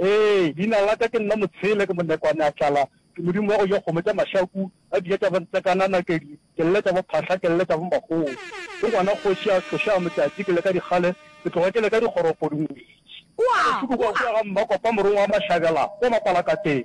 Ee, leina la ka ke nna Motshele, ke monekwane a tlala, ke modimo wa go ja kgomo tša mašaku, a dija tša bontsekana, nakedi, ke lle tša bophahla, ke lle tša bomakgomo. Ke ngwana kgoši a tlošago motšatši, ke le ka dikgale, ke tloga ke le ka dikgoropo dingwetši. Bohloko bja go ya ga Mmakopa morongwa wa Mašabela kwa Mapalakateng.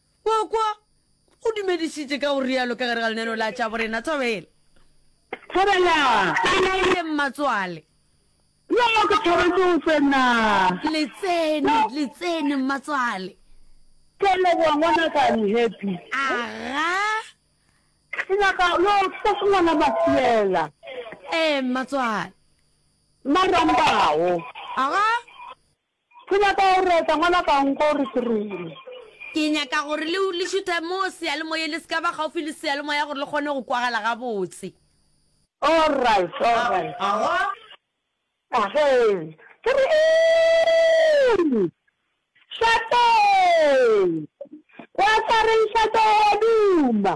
Kwa, kwa, o dumedisitše ka go rialo ka gare ga leneno la tša borena. Thobela. Thobela. Bolaile mmatswale. Yo, ke thabetse go tsena. Le tsene, le tsene, mmatswale. Ke a leboga, ngwanaka. I'm happy. Aga. Ke nyaka, yo, ke se ngwana Mafiela. Ee, mmatswale. Marambao. Aga. Ke nyaka go reta, ngwanaka nko re ke reng? Ke nyaka gore le, le šuthe mo seyalemoyeng, le se ka ba gaufi le seyalemoya gore le kgone go kwagala gabotse. Alright, alright. Ahwa! Ahwe! Ke re eng? Šate! Wa tla reng Šate, o a duma?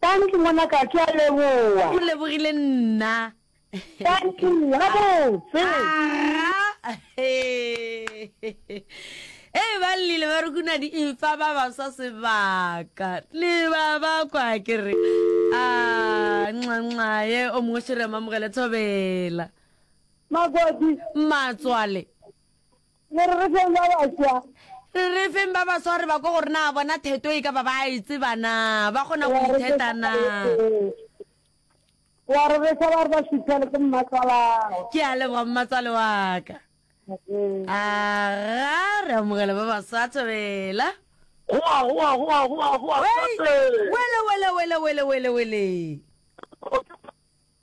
Thank you ngwanaka ke a leboa. O lebogile nna. Thank you gabotse. Aa Ee ba lile ba re kuna di ifa ba ba sa sebaka le ba ba kwa ke re a nxa nxa ye o mongwe shere mamogele thobela Magodi. Matswale. Le re re feng ba baswa. Le re feng ba baswa re ba ko gore na bona theto e ka ba ba e tseba na ba kgona go itheta na. Wa re re sa ba re ba sithele ke mmatswala. Ke a leboga mmatswale wa ka. A ga re amogela ba baswa thobela. Goa goa goa goa goa. Wele wele wele wele wele wele.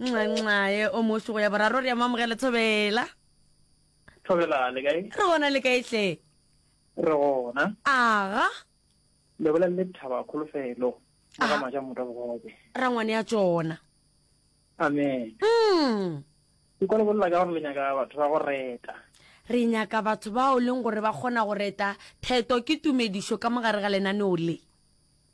nxanxae o moso go ya boraro re ya mamogela thobela thobela le kae re gona le kae hle re gona aga le bolela le thaba kholofelo ga ah. maja motho bogobe ra ngwane ya tsona amen mm ke kwa le bolela ka gore le nyaka batho ba go reta re nyaka batho bao leng gore ba kgona go reta theto ke tumedišo ka mogare ga lenaneo le